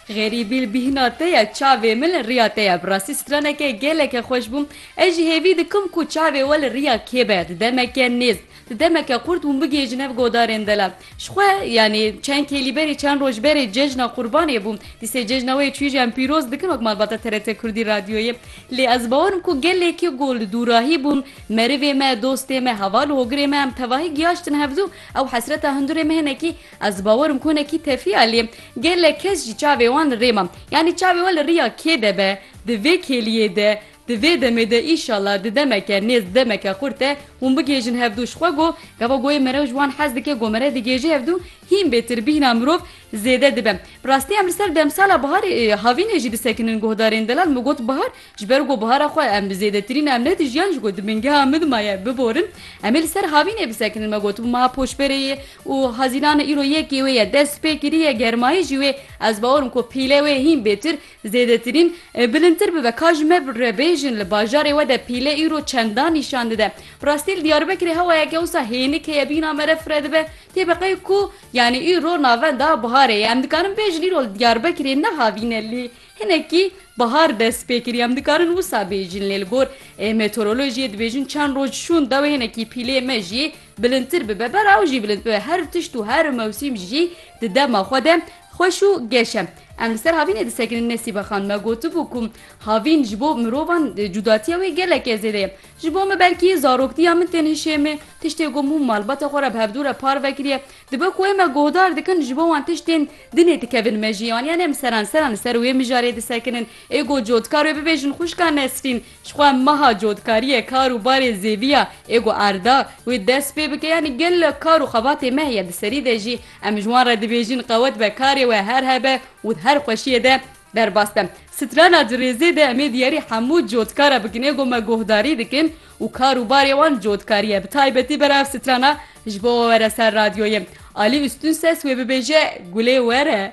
Xerîbî li bîhna te ye, çavê min li riya te ye. Bi rastî straneke geleke xweş bû. Ez jî hêvî dikim ku çavê we li riya kê be. Di demeke nêz, di demeke qurt hûn bigihêjin hev godarên dela. Ji xwe, yanî çend kêlî berê, çend roj berê cejna Qurbanê bû. Dîsê cejna wê çûyîjiyan pîroz dikin wek malbata TRT Kurdî Radyoyê. Lê ez bawer im ku gelekî ku li dûrahî bûn, merivê me, dostê me, heval û hogirê me em tevahî giyaştin hev zû, ew hesreta hundirê me hinekî Ez dibawerim ku hinekî tefî e lê gelek kes jî çavê wan li rê ma. Yanî çavê we li riya kê de be? Di vê kêliyê de, di vê demê de îşallah di demeke nêz di demeke xurt de hûn bigêjin hev dû. Ji xwe go gava goyê mere ji wan hez dike go mere digêje hev dû hîn bêtir bîhna mirov zêde dibe. Bi rastî em li ser demsala biharê havînê jî disekinin guhdarên delal min got bihar Ji ber ku buhara xwe em bi zêdetirîn em nedijiyan ji ku di bingeha min ma ye biborin, em ê li ser havînê bisekinin me got ma poşberê yê û hazînana îro yekê wê ye dest pê kiriye germayî jî wê ez bawer im ku pîle wê hîn bêtir zêdetirîn bilindtir bibe ka ji me re bêjin li bajarê we de pîle îro çendan nîşan dide rastî li Diyarbekirê hewayeke wisa hênik heye bîna me re fire dibe tê beqey ku yanî îro navenda buharê ye em dikarin bêjin îro li Diyarbekirê ne havîn e lê Hinekî bihar dest pê kiriye em dikarin wisa bêjin lê li gor meteorolojiyê dibêjin çend roj şûn dewê hinekî pîlê me jî bilindtir bibe ber ew jî bilind bibe her tişt û her mewsîm jî di dema xwe de xweş û geş e. Em li ser havînê disekinin Nesîbe Xan me gotibû ku havîn ji bo mirovan cudatiya wê geleke zêde ye. Ji bo min belkî zaroktiya min tên hişê min tiştê ku hemû malbata xwe re bi hevdû re parve kiriye Dibe ku wê me guhdar dikin ji bo wan tiştên din ê dikevin me jî aniya ne em seran seran li ser wê mijarê disekinin. Ê got cotkar wê bibêjin xwişka Nesrîn ji xwe meha cotkariyê kar û barê zêdî ya ê got erda wê dest pê bike yanî gelek kar û xebatê me heye di serî de jî em ji wan re dibêjin qewet be karê we her hebe û di her xweşiyê de Derbas de, strana di rêzê de em ê diyarî hemû cotkara bikine ku me guhdarî dikin û kar û barê wan cotkarî ye. Bi taybetî bera ev strana ji bo we were ser radyoyê. Alî Ustûnses wê bibêje Gulê were.